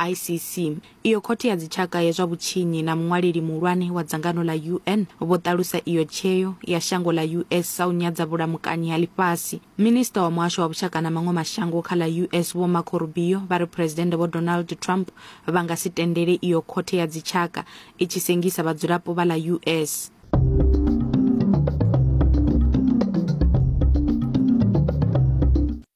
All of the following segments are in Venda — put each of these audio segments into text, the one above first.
ICC, iyo khothe ya dzitshaka ya zwa vhutshinyi na muṅwaleli muhulwane wa dzangano ḽa UN vho ṱalusa iyo tsheo ya shango ḽa US sa u nyadza vhulamukanyi ha ḽifhasi. Minisiṱa wa muhasho wa vhushaka na maṅwe mashango kha ḽa US Vho Marco Rubio vha ri Phresidennde Vho Donald Trump vha nga si tendele iyo khothe ya dzitshaka i tshi sengisa vhadzulapo vha ḽa US.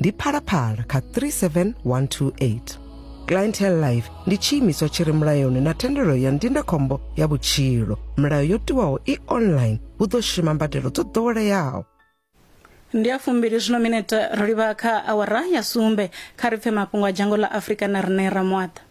ndi phalaphala kha 37128 clientele life ndi tshiimiswa tshi re mulayoni na thendelo ya ndindakhombo ya vhutshilo milayo yo tiwaho i online hu ḓo shuma mbadelo dzo ḓoweleaho ndi a fumbili zwino minete ro livha kha awara ya sumbe kha ri pfe mafhungo a dzhango ḽa afurika na riṋe ramwaḓa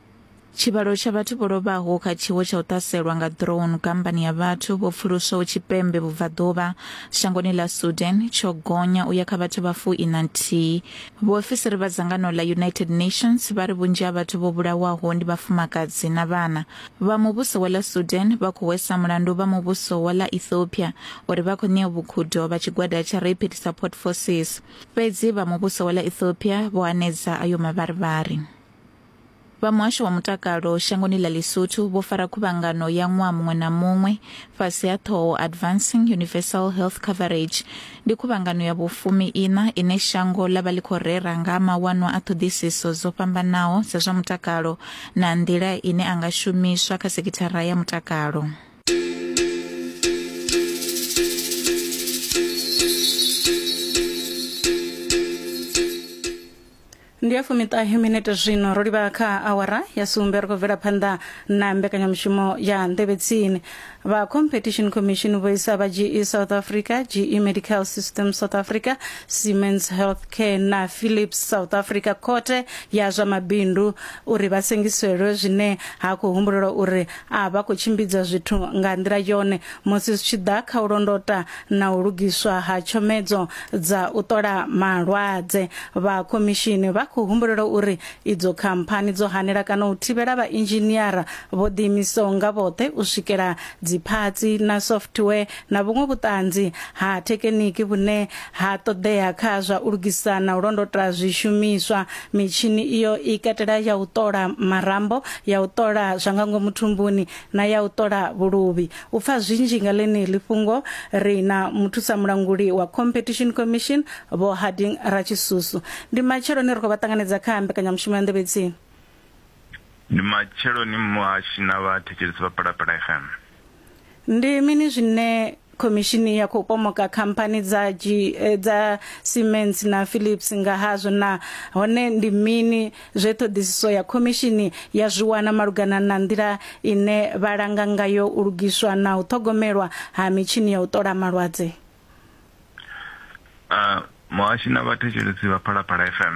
Tshivhalo tsha vhathu vho lovhaho kha tshiwo tsha u ṱhaselwa nga drone kambani ya vhathu vho pfuluswaho tshipembe vhubvaḓuvha shangoni ḽa Sudan tsho gonya u ya kha vhathu vha fu ina nthihi. Vhuofisiri vha dzangano ḽa United Nations vha ri vhunzhi ha vhathu vho vhulawaho ndi vhafumakadzi na vhana. Vha muvhuso wa ḽa Sudan vha khou hwesa mulandu vha muvhuso wa ḽa Ethiopia uri vha khou ṋea vhukhudo vha tshigwada tsha Rapid Support Forces. Fhedzi vha muvhuso wa ḽa Ethiopia vho hanedza ayo mavharivhari. Vha muhasho wa mutakalo shangoni ḽa Lesotho vho fara khuvhangano ya ṅwaha muṅwe na muṅwe fhasi ha ṱhoho Advancing Universal Health Coverage. Ndi khuvhangano ya vhufumi ina ine shango ḽa vha ḽi khou rera nga mawanwa a ṱhoḓisiso dzo fhambanaho dza zwa mutakalo na nḓila ine a nga shumiswa kha sekithara ya mutakalo. ndi ya fumiṱahe minete zwino ro livha kha awara ya sumbe ri khou bvela phanḓa na mbekanyamushumo ya nḓevhe tsini vha competition commission vho isa vha ge south africa ge medical system south africa siemens health care na philips south africa khothe ya zwa mabindu uri vha sengiselwe zwine ha khou humbulelwa uri a vha khou tshimbidza zwithu nga nḓila yone musi zwi tshi ḓa kha u londota na u lugiswa ha tshomedzo dza u ṱola malwadze vha khomishini vha khou humbulela uri idzo khamphani dzo hanela kana u thivhela vha inzhiniara vho ḓiimisaho nga vhoṱhe u swikela dziphatsi na software na vhuṅwe vhuṱanzi ha thekeniki vhune ha ṱoḓea kha zwa u lugisa na u londota zwishumiswa mitshini iyo i katela ya u ṱola marambo ya u ṱola zwa nga ngomu thumbuni na ya u ṱola vhuluvhi U pfa zwinzhi nga ḽeneḽi fhungo, ri na muthusamulanguli wa Competition Commission, Vho Harding Ratshisusu. Ndi matsheloni ri khou vha ṱanganedza kha mbekanyamushumo ya Nḓevhe Tsini. Ndi matsheloni muhashi na vhathetshelesi vha Phalaphala FM. Ndi mini zwine khomishini ya khou pomoka khamphani dza dza Siemens na Philips nga hazwo na hone ndi mini zwe ṱhoḓisiso ya khomishini ya zwi wana malugana na nḓila ine vha langa ngayo u lugiswa na u ṱhogomelwa ha mitshini ya u ṱola malwadze. Muhashi na vhathetshelesi vha Phalaphala FM.